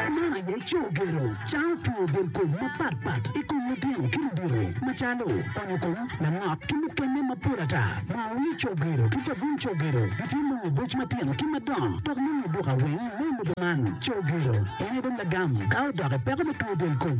Man aye co gero, cawo tweyo del kom mapat pat i kom litino ki ludito macalo onyo kom, lanok ki mukene mapol ata. Moo wiye co gero ki cabun co gero gitye nongo boc matino ki madongo dok nongo i duka weng me lobo man. Co gero en aye dong lagam ka odok i peko me tweyo del kom.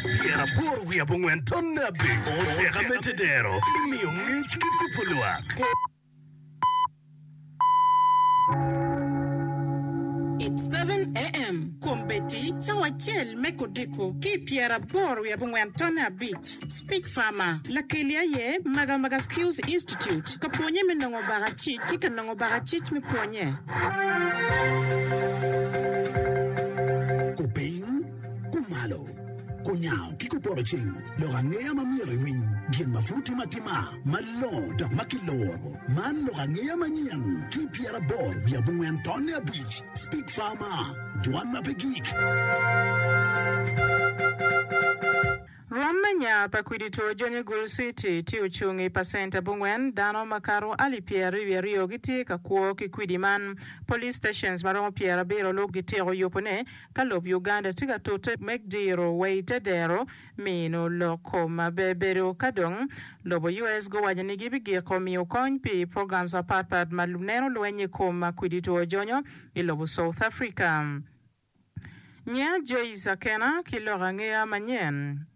Pyera aboro wiye abongwen tonne abic oteka me tedero imiyo ngec ki kubo lwak. It 7 AM kwom beti cawa acel me kodiko ki i pyera aboro wiye abongwen tonne abic. Speak Farmer. Lakeli aye Magamaga Skills Institute ka pwonye me nongo baka cic ki ka nongo baka cic me pwonye. Kupiny, kumalo, kunyango ki kupoto cing lok angeya ma myero iwiny, gin ma pud tye matima, malongo dok ma kiloro. Man lok angeya manyen ki i pyeraboro wiye abongwen tonne abic, Speak Farmer, Dwan ma pe Gik. Rwom me nya pa kwidi two jony i Gulu City tye ocung i pacent abongwen, dano makato alip pyeraryo wiye aryo gitye ka kwo ki kwidi man. Police stations maromo pyerabiro lub gityeko yubo ne ka lob Uganda tye ka tute me diro wa ite dero mino lok kom bebedo ka dong lobo US guwaco ni gibi giko miyo kony pi programs mapat pat ma neno lweny i kom kwidi two jonyo i lobo South Africa. Ngeya Joyce kena ki lok angeya manyen.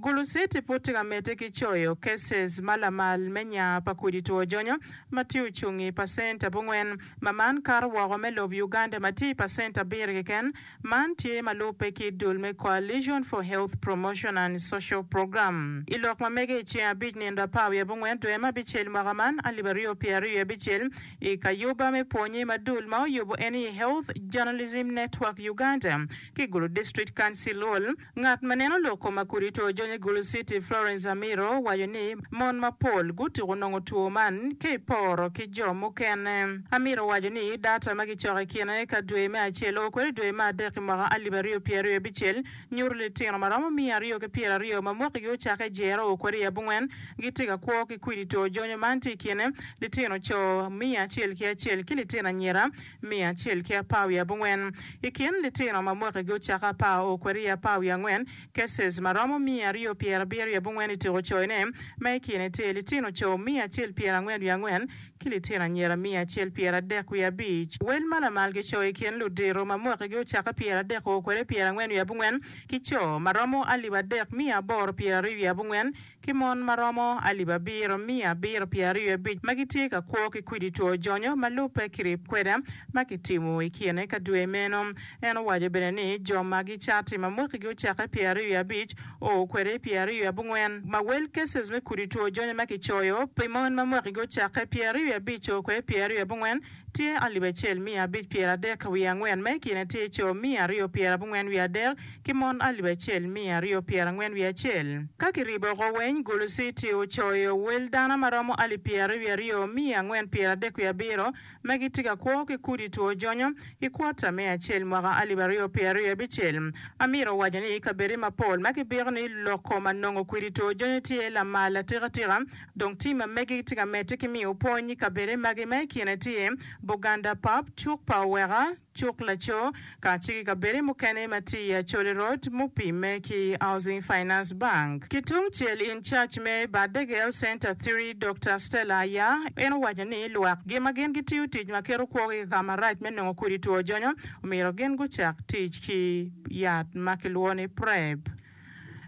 Guluceti pud tye ka medde ki coyo cases ma lamal me nya pa kudi two jonyo ma tye ocung i pacent abongwen ma man kato woko me lob Uganda ma tye i pacent abiro keken. Man tye ma lubbe ki dul me Coalition for Health Promotion and Social Program. I lok ma mege i ceng abic nindo apar wiye abongwen dwe me abicel mwaka man alip aryo pye aryo abicel, I kayuba me pwonye ma dul ma oyubo en i Health Journalism Network Uganda ki Gulu District Council Hall, ngat ma neno lok koma kudi to jony i Gulu City Florence Amiro waco ni mon mapol gutuku nongo two man ka i poro ki jo mukene. Amiro owaco ni data ma kicoko i kine ka dwe me acel o kwede dwe me adek i mwaka alip aryo pyeraryo abicel nyuto litino ma romo miya aryo ki pyeraryo ma mwakigi ocakke Jero kwede i abongwen gitye ka kwo ki kwidi two jonyo man tye i kine litino co miya acel ki acel ki litino anyira miya acel ki apar wiye abongwen. I kin litino ma mwakigi ocakke apar o kwede i apar wiye angwen, cases, ma romo miya aryo pyerabiro wiye abongwen i tuko coyone ma i kine tye litino co miya acel pyerangwen wiye angwen ki litino anyira miya acel pyeradek wiye abic. Wel ma lamal ki co i kin ludito ma mwakigi ocakke pyeradek oo kwede pyerangwen wiye abongwen, ki co ma romo alip adek miya aboro pyeraryo wiye abongwen, ki mon ma romo alip abiro miya abiro pyeraryo wiye abic, ma gitye ka kwo ki kwidi two jonyo ma lubbe ki rip kwede ma kitimo i kine ka dwe meno. En owaco bene ni, Jo ma gicati ma mwakigi ocakke pyeraryo wiye abic, o kwede pi aryo i abongwen ma well cases me kudi two jony ma ki coyo pi mon ma mwaki gi ocakke pi aryo i abic o kwede pi aryo i abongwen tye alip acel miya abic pyer adek wiye angwen ma i kine tye co miya aryo pyer abongwen wiye adek ki mon alip acel miya aryo pyer angwen wiye acel. Ka ki ribo oko weny guluci tye ocoyo well dana ma romo alip pyer aryo wiye aryo miya angwen pyer adek wiye abiro, ma gitye ka kwo ki kudi two jonyo i kwota me acel mwaka alip aryo pyera aryo abicel. Amito waco ni i kabedde mapol ma kibiko ni loko ma nongo kwidi two jonyo tye lamal atikatika, dong tim ma megi gitye ka medde ki miyo pwony i kabedde magi ma i kine tye, Buganda Pap, Cuk pa Oweka, cuk laco, kacel ki kabede mukene ma tye i Acholi Road mupimme ki Housing Finance Bank. Ki tung cel in charge me Badde Girls Centre Three, Dokta Stella Aya, en owaco ni lwak gi ma gin gitiyo tic ma keto kwogi i kaka marac me nongo kodi two jonyo, omyero gin gucak tic ki yat ma kilwongo ni Prep.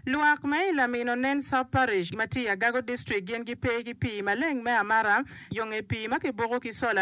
Lwak me i Lamino Nen Sub Parish ma tye i Agago District gin gipe ki pii maleng me amara, yo nge pii ma kiboko ki sola,